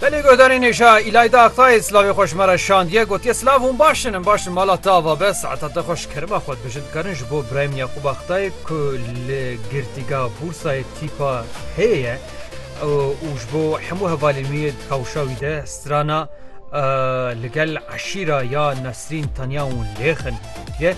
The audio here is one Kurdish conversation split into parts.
Belê guhdarê nêşa îlayda Aktayê silavê xwe ji me re şandiye gotiye silav hûn baş in em baş in mala te ava be saeta te xwe ji kerima xwe dibijin dikarin ji bo Brahim Yaqûb Aktayê ku li girtîga Bûrsayê tîpa hê ye û ji bo hemû hevalên wî di kewşa wî de strana li gel eşîra ya Nesrîn Tanya û Lêxin ye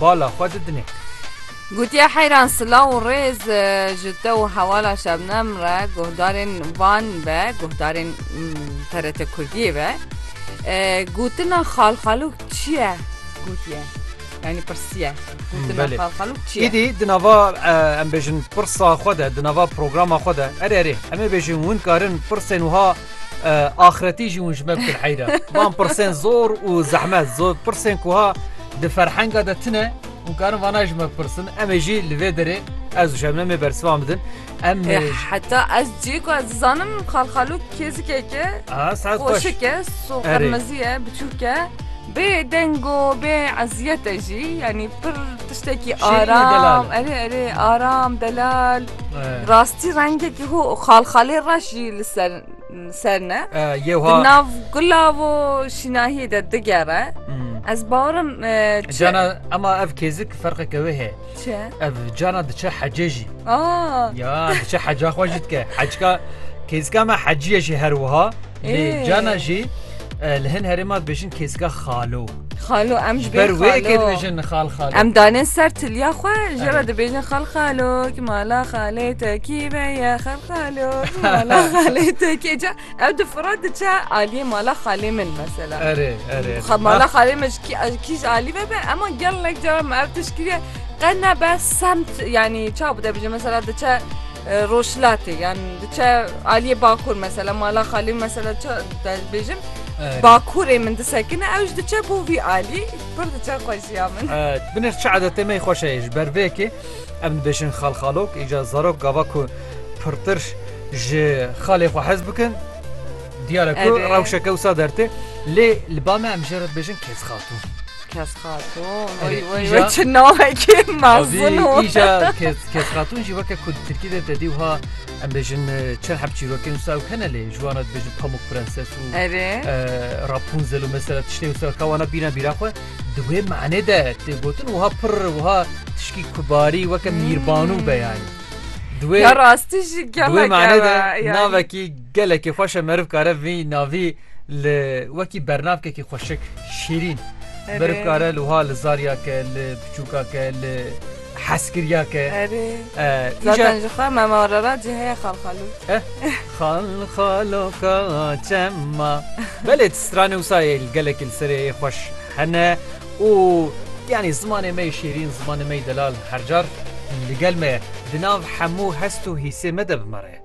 bala xwe didine. Gotiye Heyran silaw û rêz ji te û hevala Şebnem re guhdarên van ve guhdarên TRT Kurdiyê ve gotina xalxalûk çi ye gotiye yanî pirsiye gotina xalxalûk çi ye? Îdî di nava em bêjin pirsa xwe de di nava programa xwe de erê erê em ê bêjin hûn karin pirsên wiha Axretî jî hûn ji me bikin heyra. Van pirsên zor û zehmet zor pirsên ku ha di ferhenga de tine û karin vana ji me pirsin em ê jî li vê derê ez û şebnemê bersivan bidin. Em heta ez cî ku ez dizanim xalxalû kêzikeke xweşike qirmiziye biçûke. Bê dengo bê eziyete jî yanî pir tiştekî aram erê erê aram delal. Rastî rengekî hû xalxalê reş jî li ser ser ne nav gulav û şînahiyê de digere ez barim cana ema ev kêzik ferqeke wê heye ev cana diçe hecê jî ya diçe heca xwe jî dike hecka kêzika me heciyê jî her wiha cana jî li hin herêma dibêjin kêzika xalo Xalo em ji ber wê kêdibêjin xal xalo. Em danin ser tilya xwe ji re dibêjin xal xalo ki mala xalê te kî ve ye xal xalo ki mala xalê te kê ca ew di fira diçe aliyê mala xalê min mesela. Erê erê. Xa mala xalê min ji kî kî ji alî ve be ema gelek cara me ev tişkî ye qe nebe semt yanî çawa bide bije mesela diçe Rojhilatê yan diçe aliyê bakur mesela mala xalê min mesela çi dibêjim bakurê min disekine ew ji diçe bo vî alî pir diçe xweşiya min. Binir çi edetê me xweş e ji ber vê yekê em dibêjin xalxalok îca zarok gava ku pirtir ji xalê xwe hez bikin diyare ku rewşeke wisa dertê lê li ba me em jê re dibêjin kêz xatûn. Kes Xatun. Oy oy oy çi navekê mezin û. Îja Kes Xatun jî weke ku Tirkî de tedî wiha em bêjin çend heb çîrokên wisa ew hene lê ji wan re dibêjin Pamuk Prenses û Rapunzel û mesela tiştên wisa ka wana bîna bîra xwe di wê manê de tê gotin wiha pir wiha tişkî kubarî weke mîrbanû be yanî. Di wê rastî jî gel navekî Gelekî xweş e meriv kare vî navî li wekî bernavkekî xweşik, şîrîn meriv kare li wiha li zarya ke, li piçûka ke, li heskiriya ke. Erê. Zaten ji xwe mema re re cî heye xalxalû. Eh, xalxaloka çema. Belê ti stranê wisa yê li gelekî li serê yê xweş hene û yanî zimanê me yê şîrîn, zimanê me yê delal her car li gel me ye. Di nav hemû hest û hîsê me de bi me re ye.